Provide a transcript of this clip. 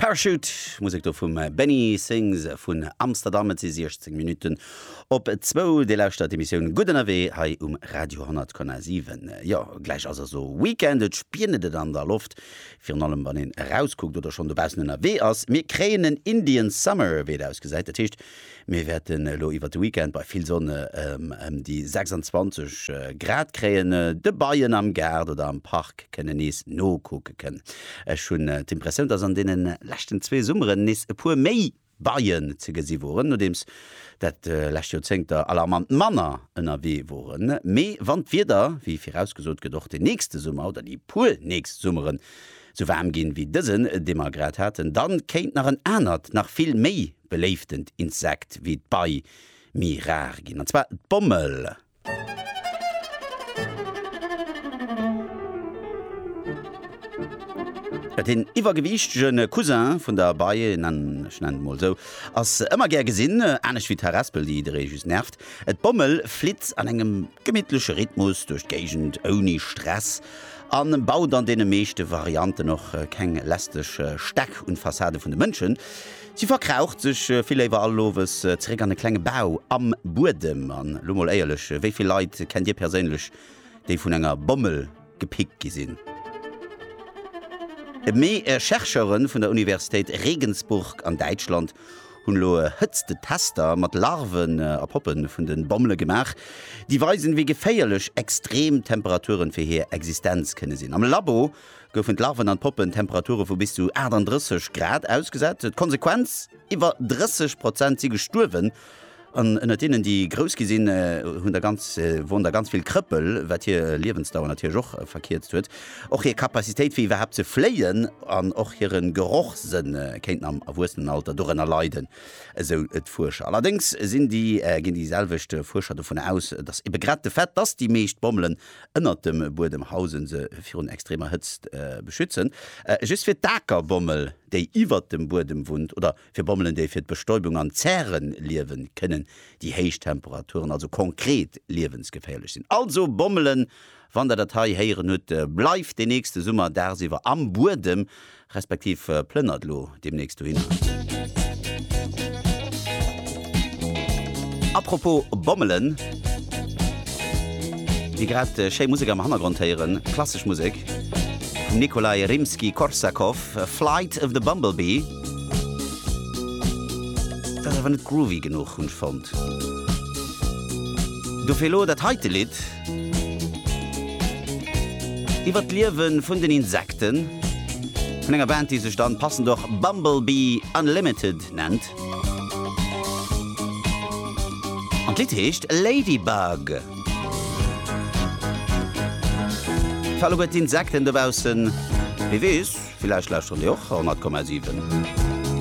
Parachute, Musek do vum Benny Sings vun Amsterdam. Et si 16 Minutten op zwou. Dir lauschtert d'Emissioun Gutt ënnerwee hei um Radio 10,7. Jo, gläich ass also Weekend, et spienet et an der Loft, virun allem wann een erauskuckt oder schonn dobaussen ënnerwee ass. Mir kréien en Indian Summer, wéi et ausgesäit. Dat heescht, Mir wäerten elo iwwert de Weekend bei vill Sonn ëm déi 26 Grad kréien. De Beien am Gaart oder am Park kënnen nees nokucke kënnen. Ech hunn d'Impressioun, dass an deene leschten zwee Summeren nees e puer méi Beien ze gesi woren, nodeems dat lescht Joerzéngter alarmant manner ënnerwee woren. Mee wann d'Wieder, wéi virausgesot gëtt, och den nächste Summer oder déi puer nächst Summeren esou waarm ginn, wéi dësen, dee mer grad haten, da kéint nach en anert, nach vill méi beléiftent Insekt wéi d'Bei méi rar ginn, an zwar d'Bommel. Datt een iwwergewiichtege Cousin vun der Bei, ech nennen et mol esou, ass ëmmer gär gesinn, anescht wéi d'Harespel, déi jidderee just nervt. D'Bommel flitt an engem gemittleche Rhythmus duerch d'Géigend ouni Stress a baut an deene meeschte Varianten och keng lästeg Stäck un d'Fassade vun de Mënschen. Si verkraucht sech vill léiwer all Owes zeréck an e klenge Bau am Buedem. An elo mol éierlech, wéi vill Leit kennt Dir perséinlech, déi vun enger Bommel gepickt gi sinn? Mee Chercheure vun der Universitéit Regensburg an Däitschland hunn elo Hëtztetester mat Larven a Poppe vun de Bommele gemaach, déi weisen, wéi geféierlech extrem Temperaturen fir hir Existenz kënne sinn. Am Labo goufen d'Larven an d'Poppen Temperature vu bis zu 38 Grad ausgesat. D'Konsequenz, iwwer 30 Prozent si gestuerwen, an ënnert deenen, déi grouss gi sinn, hunn der ganz woren der ganz vill Krëppel, wat hir Liewensdauer natierlech och verkierzt huet. Och hir Capacitéit, fir iwwerhaapt ze fléien, an och hire Gerochssënn kéinten am Erwuessenenalter dorënner leiden, esou d'Fuerscher. Allerdéngs ginn déi selwecht Fuerscher dovun aus, datt ebe grad de Fait, datt déi meescht Bommelen ënnert dem Buedem hausen, se virun extremer Hëtzt beschützen. Just fir d'Akerbommel, déi iwwert dem Buedem wunnt, oder fir Bommelen, déi fir d'Bestäubung an d'Zäre liewen, kënnen déi héich Temperaturen also konkret liewensgeféierlech sinn. Also Bommelen, wann der dat hei héieren hutt, bleift de nächste Summer dagsiwwer am Buedem, Respektiv plënnert elo deemnächst dohinner. Apropos bommelen, déi grad schéi Musek am Hannergrond héieren, klassesch Musek vum Nikolai Rimsky-Korsakov, Flight of the Bumblebee, dat ass awer net groovy genuch, hunn ech fonnt. Dofir elo dat heite Lidd. Iwwer d'Liewe vun den Insekten, vun enger Band, déi sech dann passend och Bumblebee Unlimited nennt. An d'Lidd heescht Ladybug. Fir alleguer d'Insekten dobaussen, wie weess, villäicht lauschteren déi och 100,7.